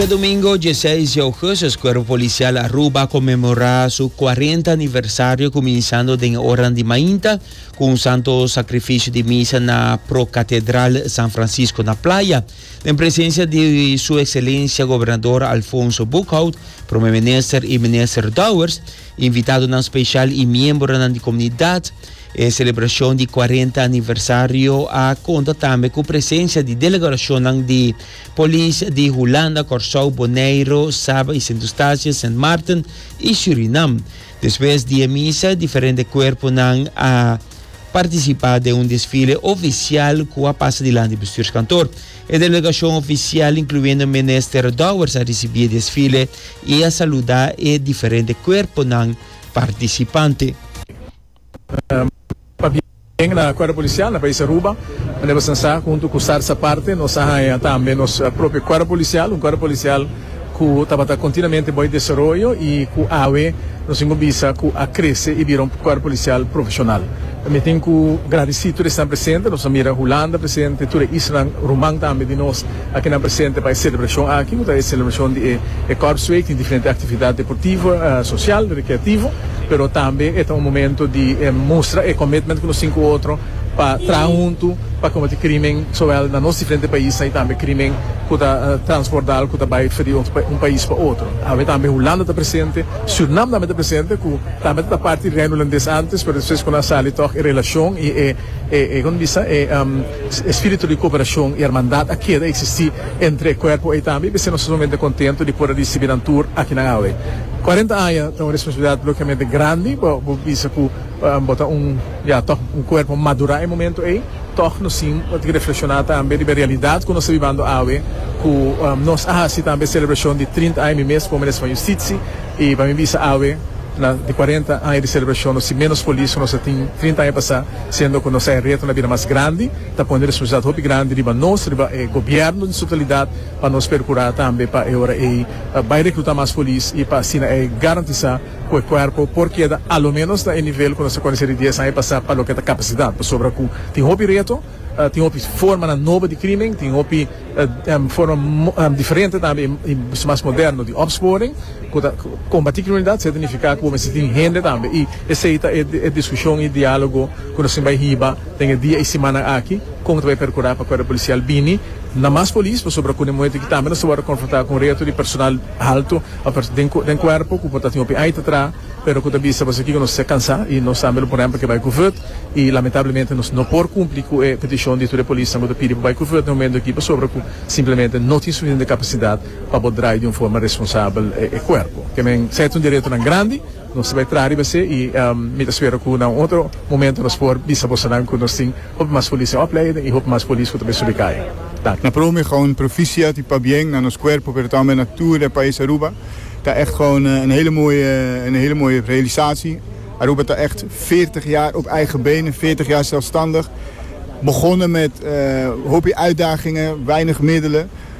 Djedomingo dieseis di ougustus Cuerpo Policial Aruba a conmemora su cuarenta aniversario cuminsando den e oranan di mainta cu un santo sacrificio di misa na Procatedral San Francisco na Playa den presencia di Su Excelencia Gobernador Alfonso Boekhout, Prome Minister y Minister Dowers. Invitadonan speshal i miembronan di komunidat. E selebrashon di kuarenta aniversario a konta tambe ku presensia di delegarashonnan di Polis di Hulanda, Kòrsou, Boneiru, Saba i Sint Eustatius, Sint Maarten i Surinam. Despues di e misa, diferente kuerponan a partisipá den un desfile ofisial ku a pasa dilanti bestuurskantoor. E delegashon ofisial, inkluyendo Minister Dowers a risibí e desfile i a saludá e diferente kuerponan partisipante. Papia tambe na kuerpo polisial na pais Aruba. Manera bo sa sa, huntu ku Sarsa Parte nos a haña tambe nos propio kuerpo polisial, un kuerpo polisial ku tabata kontinuamente bai desaroyo i ku awe nos tin ku bisa ku a krese i bira un kuerpo polisial profeshonal. Mi tin ku gradisí tur esnan presente, nos a mira Hulanda presente, tur e islanan ruman tambe di nos a kinan presente pa e selebrashon aki ku ta e selebrashon di e kòrsweek. Tin diferente aktividat deportivo, sosial, rekreativo, pero tambe e ta un momento di mustra e komitment ku nos tin ku otro pa traha huntu pa kombati krímen, sowel na nos diferente paisnan i tambe krímen cu ta transbordal, cu ta bay fadi un pais pa otro. Awe tambe Hulanda ta presente, Surinam tambe ta presente, cu tambe ta parti di Reino Hulandes antes, pero despues cuando a sali tog e relacion y e e como bisa e espirito di cooperacion y hermandad a keda existi entre e cuerpo ey tambe, y p'esey nos ta sumamente contento di por a ricibi nan tur aki nan awe. Cuarenta aña ta un responsabilidad lokiamente grandi, bo bisa cu. Bo ta un, ya tòg, un kuerpo madurá e momentu ei. Tòg nos tin di reflekshoná tambe riba e realidat ku nos ta bibando awe, ku nos a hasi tambe e selebrashon di trinta aña. Mi mes pone Minister van Yustitsi i pa mi bisa awe na di kuarenta aña di selebrashon nos tin ménos polis ku nos a tin trinta aña pasá, siendo ku nos a e reto na bira mas grandi. Ta pone responsabilidat hopi grandi riba nos, riba e gobièrnu den su totalidat pa nos perkurá tambe pa e ora ei bai rekrutá mas polis i pa asina ei garantisá. cu e cuerpo por keda a lo menos na e nivel cu nos a conoce di dies aña pasa pa loke ta capacidad, pasobra cu tin hopi reto, tin hopi formanan nobo di crimen, tin hopi forma diferente tambe y bisto mas moderno di opsporing cu ta combati criminalidad, esey ta nifica cu bo mester tin hende tambe y esey ta e discusion y dialogo cu nos tin bay hiba den e dia y simannan aki, con ta bay percura pa cuerpo policial bini na mas polis, pasobra cu den momento aki tambe nos ta wordo confronta cu un reto di personal alto. Den cuerpo cu por ta tin hopi ai ta traha pero cu ta bisa pasobra kico nos ta cansa y nos tambe lo por rempa ke bai cu verd y lamentablemente nos no por cumpli cu e peticion di tur e polisnan cu ta pidi pa bai cu verd den momento aki pasobra cu simplemente no tin suficiente capacidad pa por drai di un forma responsabel e cuerpo. Ke men sa e ta un dereto nan grandi. Nos ta bai traha riba esei i mi ta spera ku na un otro momento nos por bisa bosonan ku nos tin hopi mas polis den opleiding i hopi mas polis ku ta bai subi kai. Danki. Na prome gewoon proficiat i pabien na nos cuerpo pero tambe na tur e pais Aruba. Ta echt gewoon een hele mooie een hele mooie realisatie. Aruba ta echt veertig jaar op eigen benen, veertig jaar zelfstandig. Begonnen met hopi uitdagingen, weinig middelen.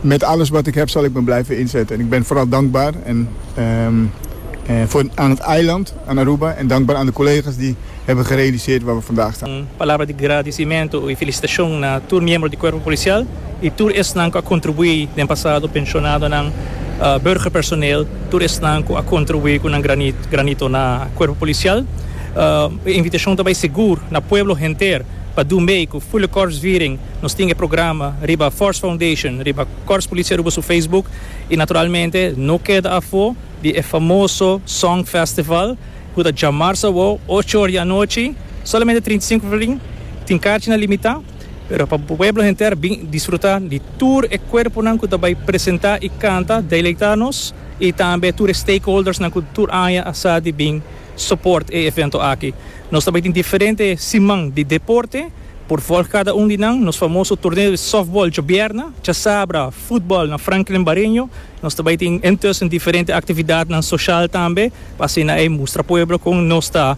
Met alles wat ik heb zal ik me blijven inzetten en ik ben vooral dankbaar voor aan het eiland, aan Aruba en dankbaar aan de collega's die hebben gerealiseerd waar we vandaag staan. Un palabra di gradicimento y felicitacion na tur miembro di Cuerpo Policial y tur esnan cu a contribui den pasado, pensionadonan, burgerpersoneel, tur esnan cu a contribui cu nan granito na Cuerpo Policial. E invitacion ta bay segur na pueblo henter pa doen bay cu Fulecorpsviering. Nos tin e programa riba Force Foundation, riba Kòrs Policia Aruba su Facebook i naturalmente no keda afó di e famoso Song Festival ku ta djamars awou ocho or di anochi, solamente trinta i sinku florìn, tin karchinan limitá pero pa pueblo henter bin disfrutá di tur e kuerponan ku ta bai presentá i kanta, deleitá nos i tambe tur e stakeholdersnan ku tur aña a sa di bin. Support e evento aki. Nos ta bai tin diferente siman di deporte por volg cada un di nan. Nos famoso torneo di softball djobièrna, chasabra, futbal na Franklin Bareño. Nos ta bai tin intussen diferente actividadnan social tambe pa asina ei mustra pueblo con nos ta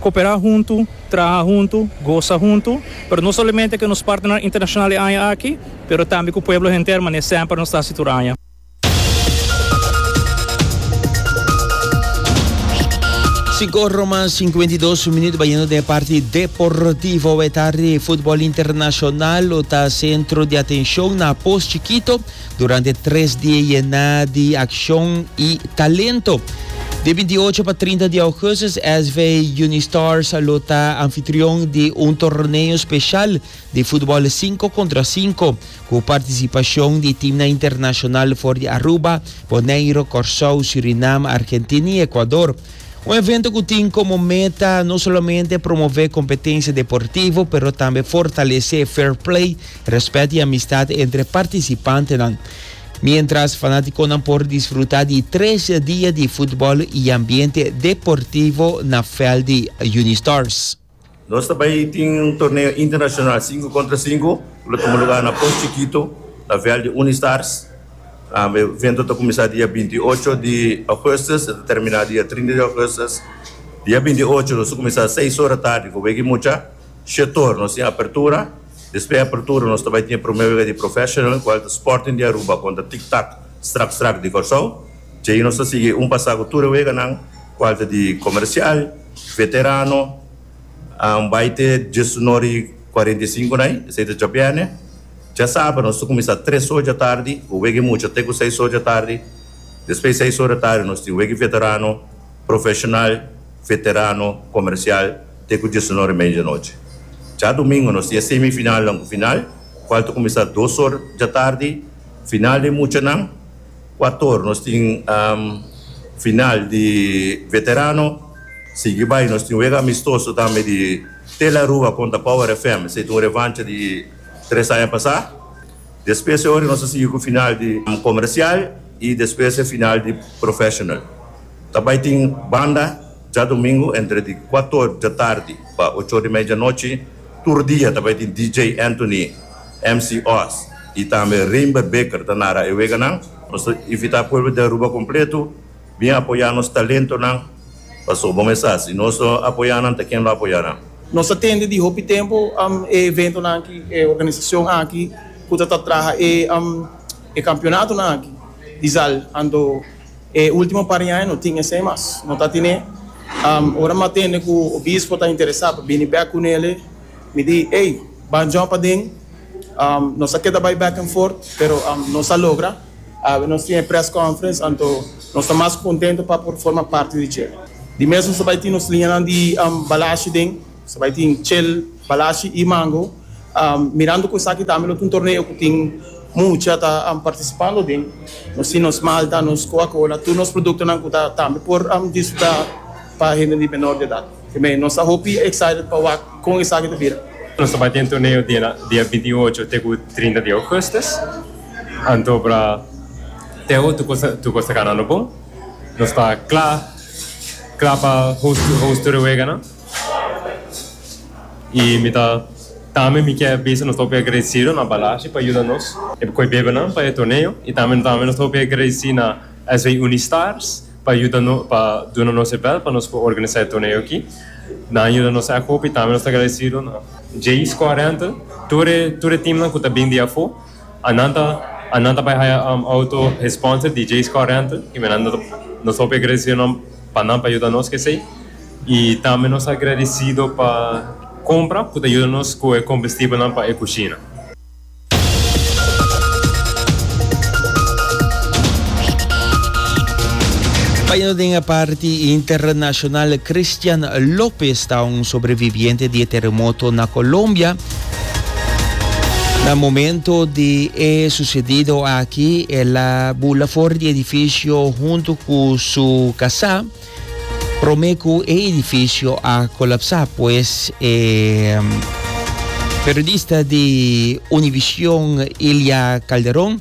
cooperá huntu, traha huntu, goza huntu. Pero no solamente cu nos partnernan internacional e aña aki pero tambe cu pueblo henter mane semper nos ta hasi tur aña. Sico Roma cincuenta y dos minuut bayendo den parti deportivo we tarde football internacional lo ta centro de atencion na pos chiquito durante tres die yena di accion y talento. De 28 pa 30 di augustus SV Unistars lo ta anfitrion di un torneo special di futbol sinku kontra sinku ku partisipashon di timnan internashonal for di Aruba, Boneiru, Kòrsou, Surinam, Argentina i Ekuador. Un evento ku tin komo meta no solamente promové kompetensia deportivo pero tambe fortalesé fair play, rèspèt i amistat entre partisipantenan. Miéntras fanátikonan por disfrutá di tres dia di futbol i ambiente deportivo na vèlt di Unistars. Nos ta bai tin un torneo internacional sinku kontra sinku ku lo tuma lugar na Port Chikito na vèl di Unistars. E evento ta kuminsá dia binti i ocho di ougùstus e ta terminá dia trinta di ougùstus. Dia binti i ocho nos ta kuminsá seis ora tardi ku wega i mucha. Shetor nos tin apertura, despues di apertura nos ta bai tin e promé wega di professional kual ta Sporting di Aruba kontra Tik Tak Strak Strak di Kòrsou. Dje ahi nos ta sigui un pasá ku tur e weganan kual ta di Komersial, Veterano an bai te diesunor i kuarenta i sinku na i, esei ta djabièrnè. Djasabra nos ta kuminsá tres or dja tardi ku wega i mucha te ku seis or dja tardi. Despues di seis or dja tardi nos tin wega i veterano, profeshonal, veterano, komersial te ku diesunor i media di anochi. Dja dumingu nos tin e semifinalnan ku final, kual ta kuminsá dos or dja tardi. Final den muchanan. Ekuator nos tin final di Veterano, sigui bai nos tin un wega amistoso tambe di Tel Aruba kontra Power FM, esei ta un revancha di tres aña pasá. Despues e ora nos a sigui ku final di Komersial i despues e final di Professional. Ta bai tin banda djadumingu entre di kuator djatardi pa ocho ora i media djanochi, tur dia ta bai tin DJ Anthony. MC Oz y tambe Reimbe Beker ta nara e weganan. Nos ta invita pueblo di Aruba completo bin apoya nos talentonan pasobra bon mesa si nos no apoya nan ta ken lo apoya nan. Nos ta tende di hopi tempo e eventonan aki, e organisacion aki cu ta ta traha e campeonatonan aki di zal anto e ultimo par di aña no tin esey mas, no ta tine. Ora mi a tende cu Obispo ta interesa pa bini bek cu nele. Mi di, Ey, ban djòp aden. Nos a keda bai back and forth, pero nos a logra. Awe nos tin e press conference, anto nos ta mas kontento pa por forma parti di dje. Di mes nos a bai tin nos liñanan di balashi den. Nos a bai tin chel, balashi i mango. Mirando ku esaki tambe lo ta un torneo ku tin mucha ta partisipando den. Nos tin nos malta, nos Coca-Cola, tur nos produktonan ku ta tambe por disfrutá pa hende di menor di edat. Te mei, nos ta hopi excited pa wak con esaki ta bira. Nos ta bai den torneo dina dia binti i ocho te cu trinta di augustus, anto bra Teo tur cos tur cos ta ganando bon. Nos ta cla cla pa host host tur e weganan. I mi ta tambe mi kier bisa nos ta hopi agradecido na Balashi pa yuda nos e coy bebenan pa e torneo i tambe tambe nos ta hopi agradeci na SW Unistars. pa yuda no pa duna nos e bèl pa nos por organisá e torneo aki. Nan a yuda nos èk hopi, tambe nos ta agradesido na Jay Score Rental, tur e tur e teamnan ku ta bini di afó, a nan ta a nan ta bai haya outo e sponsor di Jay Score Rental, i me nan nos ta nos ta hopi agradesido nan pa nan pa yuda nos ku esei. I tambe nos ta agradesido pa Compra ku ta yuda nos ku e kombustibelnan pa e kushina. Baya no den e parti internashonal, Christian Lopez ta un sobreviviente di e teremoto na Colombia. Na momento di e sucedido aki, el a bula for di edifisio huntu cu su casa. Prome cu e edificio a colapsa pues e periodista di Univision Ilia Calderon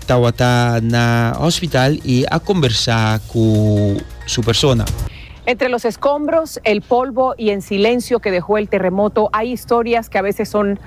tawata na hospital y a conversa cu su persona. Entre los escombros, el polvo y en silencio que dejó el terremoto hay historias que a veces son.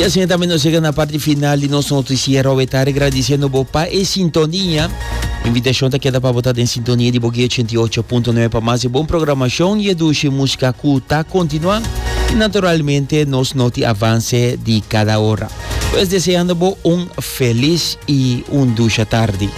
Y asina tambe nos llega na parti final di nos noticiero we tarde agradeciendo bo pa e sintonia. Invitacion ta keda pa bo ta den sintonia di Bogué 88.9 pa mas e bon programacion y e dushi música cu ta continua. Y naturalmente nos noti avance di cada hora. Pues deseando bo un feliz y un dusha tardi.